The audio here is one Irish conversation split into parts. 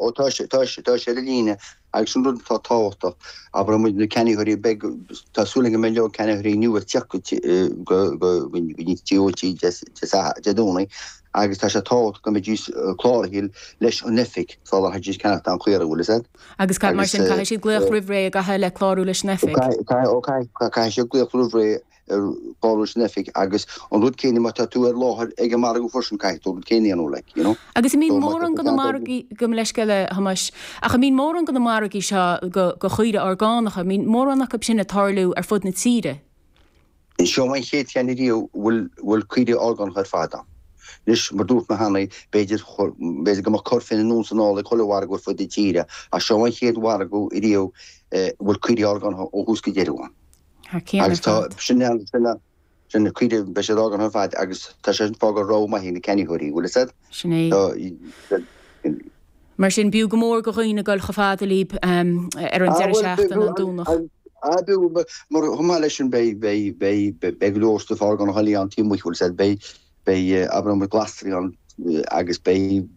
Ó, tá sé, tá sé, tá sé ar an líne agus an rud atá tábhachtach, abróidh muid, na ceannaitheoirí, beidh, tá súil agam go mbeidh go leor ceannaitheoirí nua ag tíocht go, go, go, go dtí muid Dé Sathairn, Dé Domhnaigh agus tá sé tábhachtach go mbeidís cláraithe leis an oifig sula gcaithfidís ceannacht aon chaora, bhfuil 'fhios a'd. Agus cad mar sin, caithfidh siad glaoch roimh ré an gcaithfidh le clárú leis an oifig? Caithfidh, caithfidh, ó caithfidh, caithfidh siad glaoch roimh ré. clárú san oifig agus an rud céanna má tá tú ar láthair ag an margadh freisin caithfidh tú an rud céanna a dhéanamh, like, you know. Agus an mbíonn mórán de na margaí, gabh mo leithscéal, a Thomáis, ach an mbíonn mórán de na margaí seo go go chaoirigh orgánacha, an mbíonn mórán acu sin ag tarlú ar fud na tíre. Seo an chéad cheann ariamh a bhfuil a bhfuil caoirigh orgánacha ar fad ann. Anois, mar a dúirt mé cheana, b'fhéidir b'fhéidir go mbeadh corrcheann anonn is anall ag chuile mhargadh ar fud na tíre, ach seo an chéad mhargadh ariamh a bhfuil caoirigh orgánacha ó thús go deireadh ann. Thar cionn ar fad. Agus sin é an, sin é, sin cuid de, beidh siad orgánach ar fad agus tá sé sin ag fágáil rogha mhaith ag na ceannaitheoirí, bhfuil a said? Sin é. So, yeah. Mar sin, b'fhiú go mór go dhaoine dul chomh fada libh ar an deireadh seachtaine, an Domhnach. Ah, b'fhiú, mar chomh maith le sin beidh, beidh, beidh, beidh go leor stuif orgánach eile ann taobh amuigh, bhfuil 'fhios a'd, beidh, Beidh abróidh muid glasraí ann agus beidh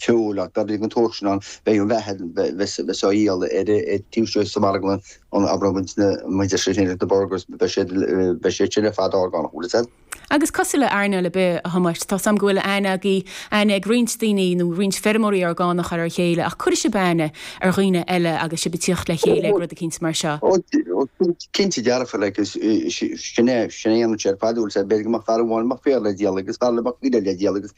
feoil ann, beidh an sórt sin ann, beidh an bheatha bheas á dhíol ar taobh istigh sa mharglann ann, abróidh muid an mhuintir sin a dhéanann na burgers, beidh siad, beidh siad sin ar fad orgánach, an bhfuil fhios a'd? Agus cosúil le earnáil ar bith, a Thomáis, tá 's a'm go bhfuil aithne agaibh, aithne ag roinnt daoine nó roinnt feirmeoirí orgánach ar a chéile ach cuirfidh sibh aithne ar dhaoine eile agus sibh a' tíocht le chéile ag rud eicínt mar seo. Ó, Cinnte dearfa, like, is sin é, sin a dhéanann sé ar fad, bhfuil 'fhios a'd, b'fhéidir go mbeadh fear amháin a mbeadh féar le díol agus fear eile a mbeadh uisce le díol agus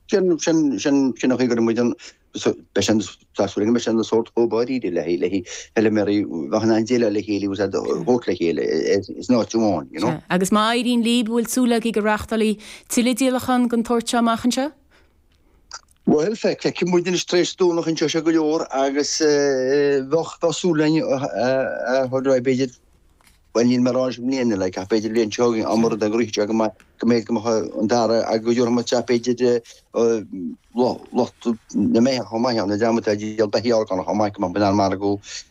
sin, sin, sin, sin an chaoi go raibh muid an, so, beidh sé an, tá súil agam, beidh sé an sórt chomh ba ríghde le haghaidh, le haghaidh, feilméaraí, a bheith in ann déileáil le chéile, he was able to work le chéile i, in áit amháin, you know. Sea, agus má éiríonn libh, an bhfuil súil agaibh go reachtálfaí tilleadh díolachán den tsórt seo amach anseo? Bhuel, feicfidh muid anois tar éis Domhnach inseoidh sé go leor agus bheadh súil againn a thurais, b'fhéidir, bhuel níl mé ag rá anois i mbliana, like, ach b'fhéidir an bhliain seo chugainn, amar'd ag rith seo go maith, go mbeidh go maith an dara agus go dtabharfadh muid isteach b'fhéidir lucht na mbeithíoch chomh maith ann, an dream atá ag díol beithígh orgánach chomh maith, go mbeadh muid in ann margadh,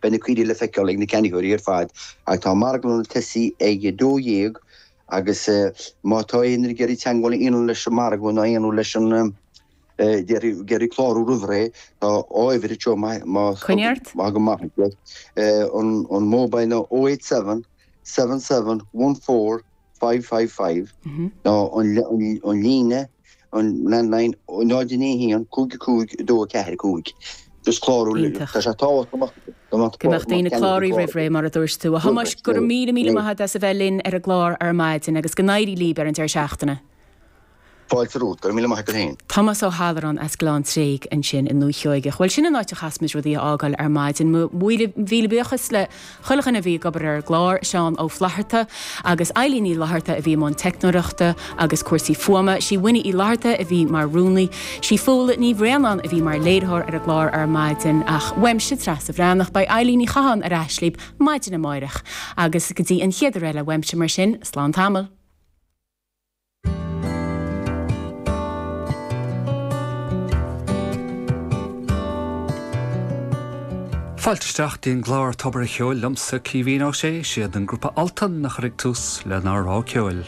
Beidh na caoirigh le feiceáil ag na ceannaitheoirí ar fad ach tá an margadh ag tosaí ag a dó dhéag agus má tá éinne ag iarraidh teagmháil a dhéanamh leis an margadh nó a dhéanamh leis an, déarfainn, ag iarraidh clárú roimh ré, tá uimhir anseo má thagann maith agat iad, an mobile ná 087. seven seven one four five five five nó an líne, an landline, 091 555 245. Is clárú le. Iontach. Tá sé tábhachtach go mbeadh. Go mbeadh daoine ag clárú roimh ré, mar a dúirt tú. A Thomáis, go raibh míle míle maith agat as a bheith linn ar an gclár ar maidin agus go n-éirí libh ar an deireadh seachtaine. Fáilte romhat. Go raibh míle maith agat féin. Tomás Ó hAllarán as Gleann Tréig ansin i nDúiche Sheoigheach. Bhuel, sin an áit a gcaithfidh muid rudaí a fhágáil ar maidin. Míle míle buíochas le chuile dhuine a bhí ag obair ar an gclár, Seán Ó Flaithearta agus Eileen Ní Fhlaithearta a bhí i mbun teicneoireachta agus cúrsaí fuaime, sí Winnie Uí Fhlaithearta a bhí mar rúnaí, sí Fódhla Ní Bhraonáin a bhí mar léiritheoir ar an gclár ar maidin ach uaimse, Treasa Bhreathnach, beidh Eileen Ní Chatháin ar ais libh maidin amáireach. Agus go dtí an chéad uair eile uaimse mar sin, slán tamall. Fáilte isteach dtí an gclár Tobar a' Cheoil liomsa, Caoimhín Ó Sé. Siad an grúpa Altan a chuirfidh tús lenár dtráth ceoil.